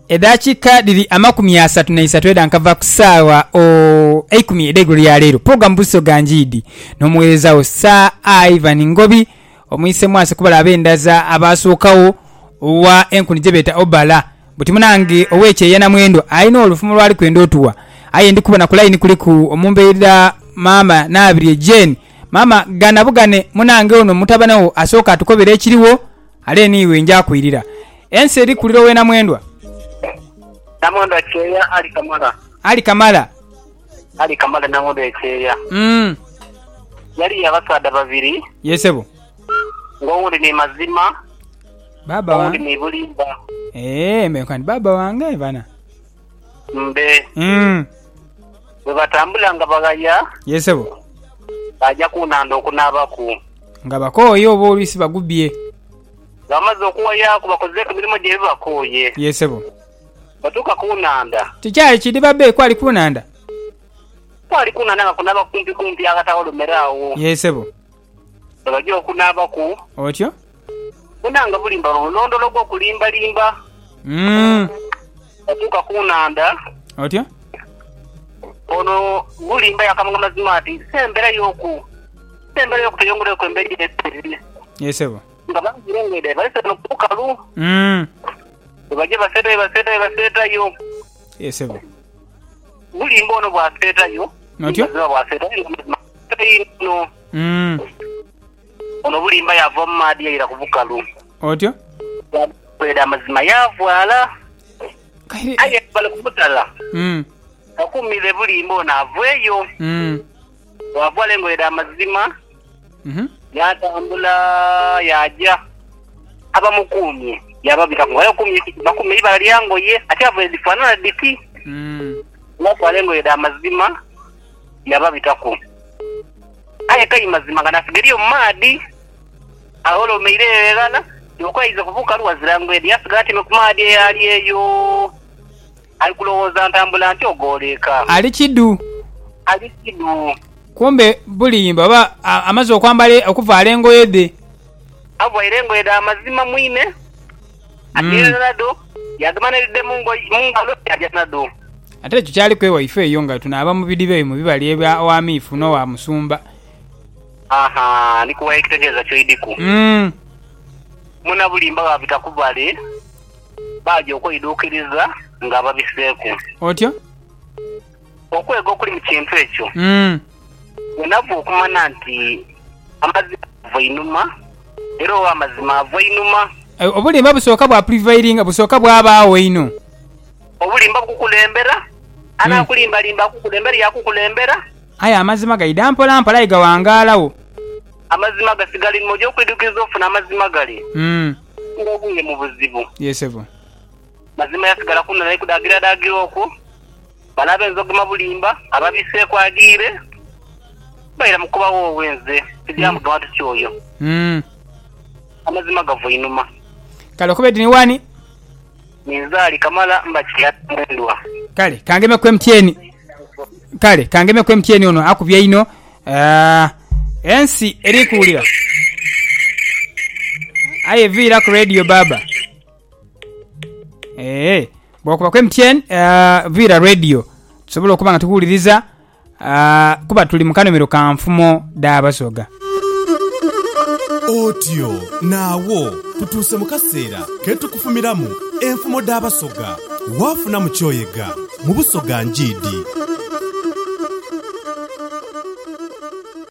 Edhakiika dhiri amakumi asatu n'eisatu edha nkava ku saagha eikumi edh'eigulo lya leero. Pulogulaamu Buso ga Ngiidhi n'omugheereza wo Sir Ivan Ngobi. Omwise mwase kubala ab'endhaza abaasookagho owa enkuni gye beeta Obala. Buti munange ow'ekyeya na mwendo alina olufumo lw'ali kwenda otuwa. Aye ndi kubona ku layini kuliku omumbeidha Maama Nabirye Jane. Maama, gana bugane munange ono mutabane wo asooke atukobere ekirigho. Ale niiwe nja kwirira. Ensi eri kulira owe Namwendwa. Namwendwa kyeeya Ali kamala. Ali kamala. Ali kamala Namwendwa ekyeeya. Umm. Yaliyo abasaadha babiri. Yee sebo. Nga owundi ni Mazima. Baaba wange. Owundi ni Bulimba. Eeh mbe nkani baaba wange bana. Mbe. Mm. Bwe batambula nga baghaya. Ye sebo. Baaja ku nhandha okunaabaku. Nga bakooye oba olwisi bagubye. Nga bamaze okughayaaku bakozeeku emirimo gyaibwe bakooye. Ye sebo. Batuuka ku nhandha. Tikyali kidhiba be kwali ku nhandha? Kwali ku nhandha nga kunaaba kumpikumpi aghatagholomeragho. Ye sebo. Nga baja okunaabaku. Otyo. Bona nga bulimba lwo mulondolo gw'okulimbalimba. Mm. Batuuka ku nhandha. Otyo. Ono bulimba yakamanga mazima ati si embera y'oku si embera y'okuteyongeraku embera ye nsiri. Ye sebo. Nga banzire ng'edha balese no ku bukalu. Mm. Bwe baja baseetayo baseetayo baseetayo. Ye sebo. Bulimba ono bw'aseetayo. Otyo. Mazima bw'aseetayo. Kaino, Mm. ono bulimba yaava mu maadhi yaira ku bukalu, Otyo? yaagwera amazima yaavwala. Kaire. Aye bali ku mutala Mm. bakuumire bulimba ono aveeyo. Mm. Waavwala engoye dha mazima Mhm. yaatambula yaaja abamukuumye yaababitaku nga yakuumye bakuumye eibala lya ngoye ate aveire dhifaanana dhiti Mm. waavwala engoye dha mazima yababitaku, aye kai mazima nga nasiga eriyo mu maadhi. Agho olwo meire eyo eghala yoka yaiza kubuuka lu ghazira ngwede, yasigala atyaime ku maadhi eyo ali eyo, ali kulowooza ntambula ntyo ghoola eka. Ali kidhu. Ali kidhu. Kumbe bulimba oba amaze okwambala okuvaala engoye dhe. Avaire engoye dha mazima mwine. Ajeerera nadho, yaadhuma n'edhidhe mu ngalo, yaaja nadho. Ate ekyo kyaliku ewaife eyo nga tunaaba mu bidhiba eyo mu bibali ebya Wamiifu n'owa Musumba. Aha, ndi kuwa ekitegeeza kyoidhiku. Munabulimba baabita ku bale, baaja okweidhuukiriza nga babiseeku. Otyo. Okwega okuli mu kintu ekyo. Wenava okumana nti amazima gava einhuma, era ow'amazima ava einhuma. Obulimba busooka bwa prevailinga, busooka bwabaagho inho. Obulimba bukukulembera, anaakulimbalimba akukulembere, yaakukulembera. Aye amazima gaidha mpola mpola aye gaghangaala wo. Amazima gasigala einhuma, oja okwidhukiriza ofune amazima gale nga ogwire mu buzibu. Mazima yasigala kunona ni kudaagiradaagira okwo. Bano ab'enzogoma bulimba, ababiseeku adhiire, baira mu kuba woowee nze tidya mu bantu kyoyo. Amazima gava einhuma. Kale okobe oti ni wani? Ninze ali Kamala mba Kilabi Mwendwa. Kale kangeme ku MTN. Kale kangeme ku MTN ono akubye einho. Ensi eri kuwulira. Aye viira ku radio baaba. Eee, bwakuba ku MTN ah, viira radio tusobole okuba nga tukuwuliriza ah, kuba tuli mu kanomero ka nfumo dha Basoga. Otyo naagho tutuuse mu kaseera ke tukufumiramu enfumo dh'Abasoga. Waafunamu ky'oyega mu Busoga Njiidi?